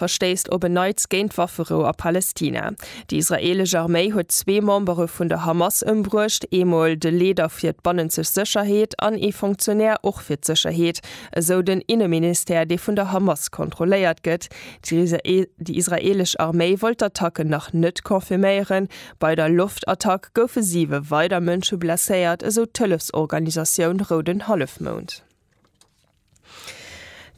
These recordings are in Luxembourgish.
verstéisst op en Neits géint d'Wafferou a Palästina. Déi israeelesch Arméi huet zwee Membere vun der Hamas ëmbruecht, eemol de Leeder fir d'bannenzeg Sécherheet an ee Fonctionnaire och fir d'Sécherheet, esou den Inneministère, dee vun der Hamas kontrolléiert gëtt. Déi israeelesch Arméi wollt d'Attacken nach net confirméieren. Bei der Loftattack goufe siwe weider Mënsche blesséiert, esou d'Hëllefsorganisatioun Rouden Hallefmound.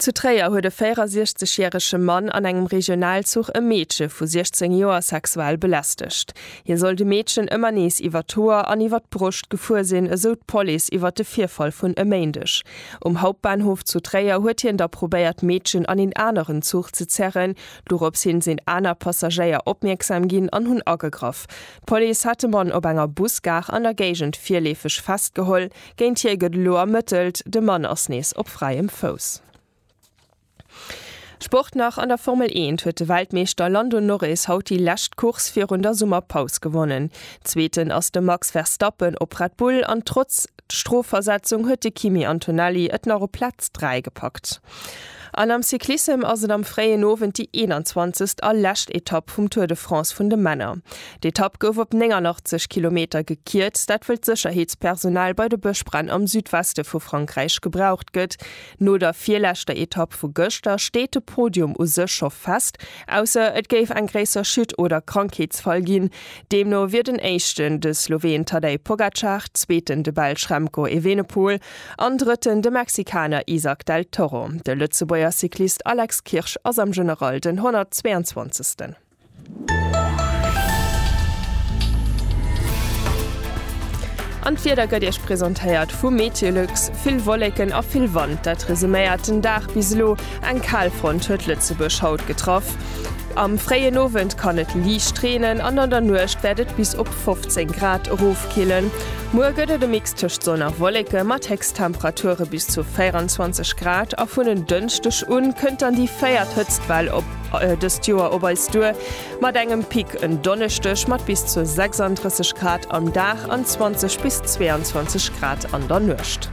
Zu Tréier huet e 64 järege Mann an engem Regionalzuch e Meedche vu 16 Joer sexuell belästegt. Hie soll de Meedchen ëmmer nees iwwer d'Hoer an iwwer d'Broscht gefuer sinn, esou d'Police iwwer de Virfall vun e Méindeg. Um Hauptbahnhof zu Tréier huet hien da probéiert d'Meedchen an een aneren Zuch ze zerren. Dorops hin sinn aner Passagéier opmierksam ginn an hunn agegraff. D'Police hat de Mann op enger Busgare an der Géigend virleefeg festgeholl. Géint hie gëtt elo ermëttelt, de Mann ass nees op fräiem Fouss. Sport nach, An der Formel eent huet de Weltmeeschter Lando Norris haut déi lescht Course virun der Summerpaus gewonnen. Zweeten ass de Max Verstappen op Red Bull an trotz Strofversetzung huet de Kimi Antonelli et nach op Plaz 3 gepackt. An am Cyclissem ass et am fréien Owend déi 21. a lescht Etapp vum Tour de France vun de Männer. D'Etapp gouf op 89 Kilometer gekierzt, dat wëll d'Sécherheetspersonal bei de Bëschbränn am Südweste vu Frankräich gebraucht gëtt. No der virleschter Etapp vu gëschter steet de Podium u sech scho fest, ausser et géif eng gréisser Chute oder Krankheetsfall ginn. Deemno wier den Éischten de Sloween Tadej Pogacar, Zweeten de Belsch Remco Evenepoel, An Drëtten de Mexikaner Izack del Toro. De Lëtzebuerger Cyclist Alex Kirsch ass am General den 122. An d'Wieder gëtt Iech presentéiert vu Meteolux, Vill Wolleken a vill Wand, dat resuméiert den Dag bis elo. Eng kal Front huet Lëtzebuerg haut getraff. Am fréien Owend kann et liicht reenen an an der Nuecht wäert et bis op 15 Grad erofkillen. Muer gëtt et e Mix tëscht Sonn a Wolleke mat Héchsttemperature bis zu 24 Grad a vun en Dënschdeg u kënnt dann déi véiert Hëtztwell op dëst Joer op eis duer, mat engem Pic en Donneschdeg mat bis zu 36 Grad am Dag an 20 bis 22 Grad an der Nuecht.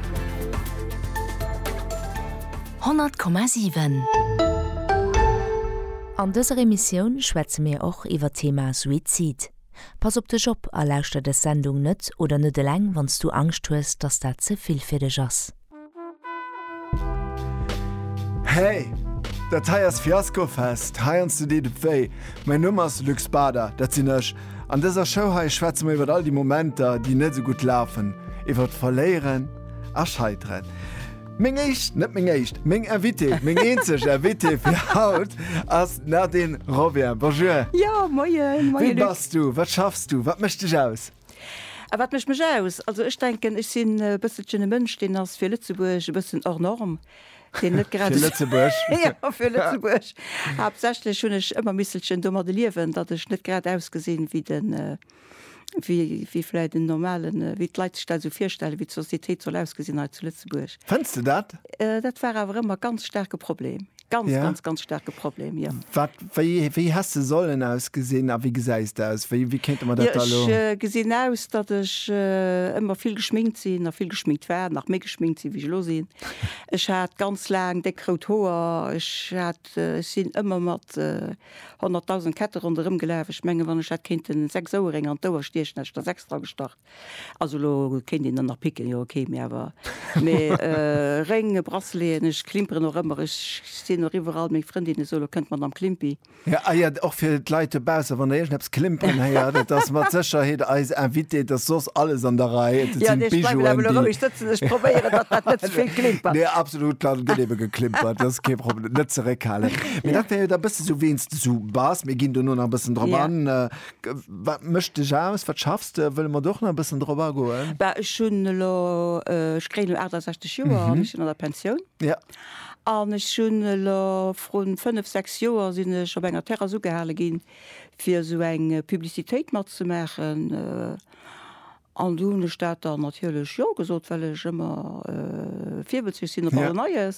100,7. An dëser Emissioun schwätze mir och iwwer d'Thema Suizid. Pass op dech op a lauschter des Sendung net oder net eleng wanns du Angscht hues dass dat ze vill fir dech ass. Hey! Dat hei ass Fiasco Fest, heiansdo deet et wéi. Mäin Numm ass Luc Spader, dat sinn ech. An dëser Show hei schwätze mer iwwert all déi Momenter, déi net esou gutt lafen, iwwert Verléieren a Scheiteren. Meng éischt, net meng éischt, meng Invitée, meng eenzeg Invitée fir haut ass d'Nadine Robien. Bonjour. Jo, moien, moien Luc. Wien bass du? Wat schaffs du? Wat mécht dech aus? A wat mécht mech aus? Also ech denken, ech sinn e bësselchen e Mënsch, deen ass fir Lëtzebuerg e bëssen hors norme, deen net grad esou. Fir Lëtzebuerg? Jo, fir Lëtzebuerg. Haaptsächlech hunn ech ëmmer misselchen domadde liewen, datt ech net grad ausgesinn wéi de. wéi vläit en normalen, wéi d'Leit sech dat esou virstellen, wéi d'Sociétéit soll ausgesinn hei zu Lëtzebuerg. Fënns de dat? Dat war awer ëmmer e ganz staarke Problem. Ganz, ganz, ganz staarke Problem, jo. Wat, wéi, wéi häss de sollen ausgesinn a wéi gesäis de aus? Wéi, wéi kéinte mer dat da elo? Jo, ech gesinn aus, datt ech ëmmer vill geschminkt sinn a vill geschminkt war, nach méi geschminkt sinn, wéi ech elo sinn. Ech hat ganz laang déck rout Hoer. Ech hat, ech sinn ëmmer mat. 100.000 Ketten ronderëm gelaf. Ech mengen, wann ech hätt kéinten 6 Oueréng an d'Ouer stiechen, hätt ech der 6 dra gestach. Also elo kéint een der nach picken, jo ok, mee awer. Mee Réng, Braceleten, ech klimperen och ëmmer. Ech sinn och iwwerall. Meng Frëndinne soen elo, Kënnt d'Madame Klimpi. Jo, ah jo, och fir d'Leit dobausse, wann der iergendepps klimperen héiert, et ass mat Sécherheet eis Invitée. Et ass soss alles an der Rei. Et sinn d'Bijouen, déi. Jo, nee, ech bleiwen awer elo roueg sëtzen. Ech probéieren, datt dat net ze vill klimpert. Nee, absolut, dann gëtt ebe geklimpert. Dat ass kee Problem. net zeréckhalen. Mee dat wär jo da e bësse sou, weens de sou bass, mir ginn dono nach e bëssen drop Ja. an, äh, g- wat mécht dech aus, wat schaffs de, wëlle mer do och nach e bëssen drop agoen? Bah, ech hunn elo, äh, ech kréien elo 68 Joer an ech sinn an der Pensioun. Ja. An ech hunn elo vrun fënnef, sechs Joer sinn ech op enger Terrass ugehale ginn, fir esou eng Publicitéit matzemaachen. Äh, An du hunn ech dat dann natierlech Jo gesot, well ech ëmmer virbëlzlech sinn op alles Neies.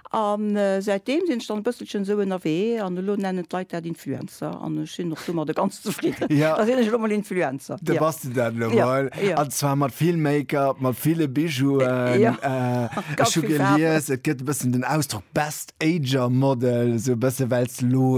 An säitdeem sinn ech dann e bësselchen esou ënnerwee an elo nennen d'Leit dat Influencer an ech sinn och domadder ganz zefridden. Da sinn ech elo emol Influencer. Da bass de dat elo emol. An zwar mat vill Make-up, mat ville Bijouen. Ech hu gelies, et gëtt e bëssen den Ausdrock Best Ager Model, esou e bësse well s de elo